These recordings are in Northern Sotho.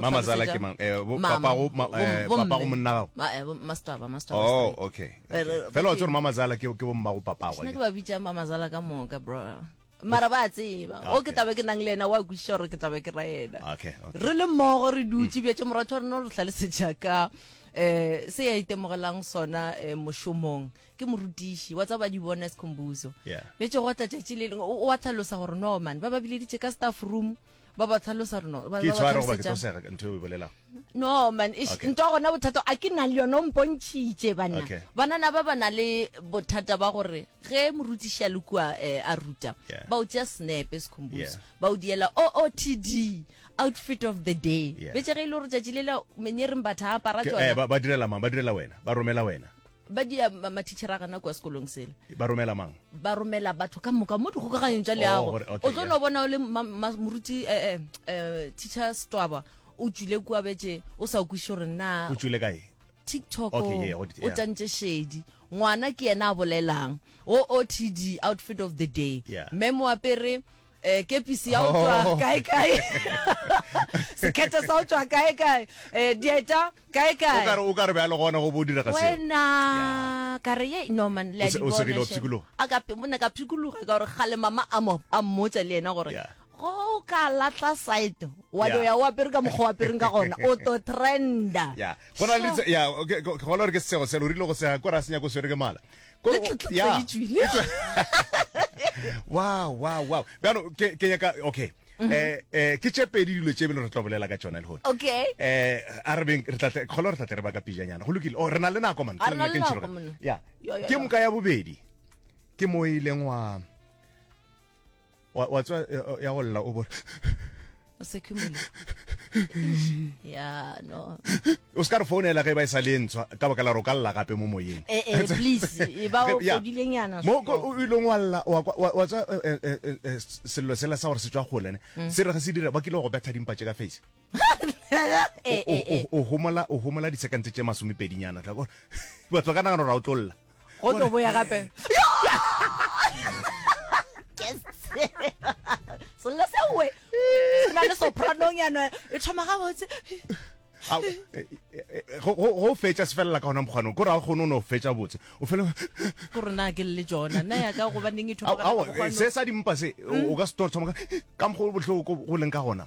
mamazala ke mang eh, papago eh, eh, monna gago oh okay fela wa tsore mamazala ke bommago papago ke ba bitsa mamazala ka moka bro mara ba tseba o ke tabe ke nang le ena wa kwešiša gore ke tabe ke ra ena re le mmogo re dutse bjatse moratho wa rena o re tlhalesetša ka eh se ya itemogelang sona eh, mošomong ke morutiši wa tsa ba di-bonus combuso betse go tlatšatši le leng o wa tlhalosa gore no mane ba ba bileditše ka staff room yeah. ba ba tlhalosa reno ba ke ba tshware goba ke tlhalosetša tosega ka ntho e o e bolelago no man ish Okay. nto gona bothata a ke na le yone o mpontšhitše banna Okay. banana ba ba na le bothata ba gore ge morutiši a le kua eh, a ruta Yeah. ba o tšea snepe sekhombuso Yeah. ba o diela ootd outfit of the day Yeah. betse ge e le gore tšatši lela menyereng batha a apara Ke- eh, tsona ba ba direla mang ba direla wena ba romela wena ba dia mathichera a gana kwa sekolong sele ba romela mang ba romela batho ka moka mo dikgokaganyong tša leago oh, o tlo no bona o le moruti um eh, eh, teacher stwaba o tswile kua betse o sa kwiše gore na o tswile kae tiktok o tantše shedi ngwana ke yena a bolelang o otd outfit of the day mme mo apere Eh, kepisi ya go tšwa Oh. kaekae sekhethe sa go tšwa kaekae um dieta kaekae okare o ka re bjalo gona go bo dira ga seo wena ka re ye norman le a O se- di o segile wa bona, phikologa. Shem. A ka pe- monna ka phikologa ka gore gale mama a mo- a mmotsa le ena gore Yeah. go o ka latla site wa Yeah. do ya o apere ka mokgwa o apereng ka gona o to trenda ya go na le Sure. tse- ya, ke- ke- ke gola gore ke sego selo o rile go sega kore a senya ko swere ke mala le tletletleditšwile wow wow wow bjano ke ke nyaka okay mhm. eh eh ke tše pedi dilo tše bile re tlo bolela ka tsona le hona okay eh a re beng re tla kholo re tla tle re ba ka pijanyana go lokile o oh, re na le nako man ke nna ke ntshiro ya ke moka ya bobedi ke mo e ileng wa wa wa tswa eh, eh, ya go lla o bo o se khumula ya no o se ka re founela ge e ba e sa le ntshwa ka baka la gore o ka lla gape mo moyeng eh eh please e ba o Ya. kodileng yana mo ko o ile wa lla wa kwa- wa wa tswa eh, eh, eh, eh, sello sela sa gore se tswa gole ne se re ge se dira ba kile go betha dimpa tše ka face Eh, eh, eh. o homola o homola disekantse tše masomepedinyana tla kore batho ba ka nagana gore a o tlolla go tlo boya gape selo sewe o na le sopranong yana e thoma gabotse Au, eh, eh, eh, go go- go fetša se felela ka gona mokgwanong kore ga o kgone o ne o fetša botse o fele ko rona ke le jona na ya ka gobaneng e thoma Au, ka au, mokgwanong. se sa dimpa se o- o ka se tlo thoma ka- ka mokgwa o bohloko go leng ka gona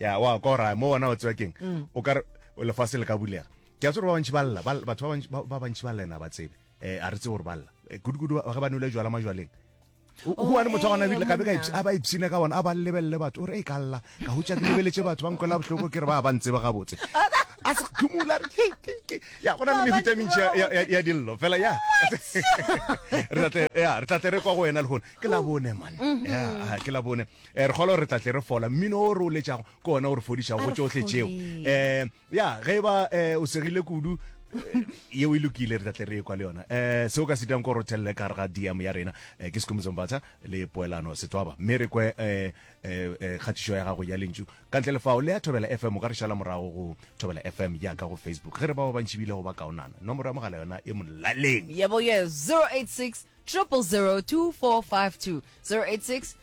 ya wa ka ora mo wona o tswa keng o ka re lefase le ka bulega ke a tsore ba bantši ba lla ba- batho ba bantši- ba ba bantši ba lla ena ba tsebe um a re tsebe gore ba lla Eh, kudu-kudu ba- ge ba nole jwala majwaleng O- o bone motho wa gona ebile gabe ka monna. ipsi- a ba ipsine ka bona a ba lebelele batho o re e ka lla ka hutša ke lebeletse batho ba nkwela bohloko ke re ba ba ntseba gabotse a se khumula re ke- ke- ke- ya go na le mehuta e mentši ya- ya- ya- ya dillo fela ya re tla tle- ya, re tla tle re kwa go wena le gone ke la bone man Ya, ah, ke la bone Re kgolwa gore re tla tle re fola. Mmino o re o letšago ke ona o re fodišago go tšohle tšeo. Um ya ge e ba um o segile kudu yeo e lokile re tla tle re ekwa le yona um seo ka se dirang ko gore o thelele ka gare ga dm ya rena um ke sekomiso mbatha le poelano setswaba mme re kwe um kgatišo ya gago ya lentšu ka ntle le fao le ya thobela fm o ka re šala morago go thobela fm ya ka go facebook ge re ba ba bantši bile go ba kaonana nomoro ya mogala yona e molaleng yebo ye 086 0002452 086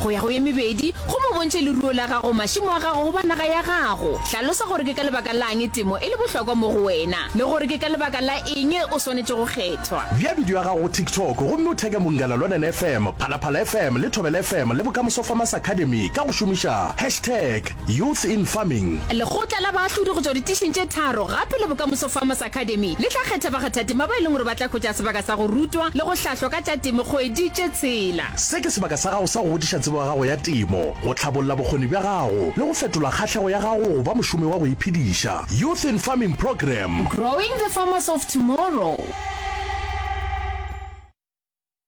Go ya go ye mebedi, go mo bontšhe leruo la gago, mašimo a gago goba naga ya gago. Hlalosa gore ke ka lebaka la'ng temo e le bohlokwa mo go wena le gore ke ka lebaka la eng o swanetše go kgethwa. Bea bidio ya gago go TikTok gomme o theke Mongalaluanan FM, Phalaphala FM le Thobela FM le Bokamoso Farmers Academy ka go šomiša hashtag. Youth in Farming. Lekgotla la baahlodi go tšwa ditišing tše tharo gape le Bokamoso Farmers Academy le tla kgetha bakgathatema ba e leng gore ba tla hwetša sebaka sa go rutwa le go hlahlwa ka tša temo kgwedi tše tshela. Se ke sebaka sa gago sa go godiša tsebo ya gago ya temo, go tlhabolla bokgoni bja gago le go fetola kgahlego ya gago go ba mošomi wa go iphediša. Youth in Farming Programme. Growing the Farmers of Tomorrow.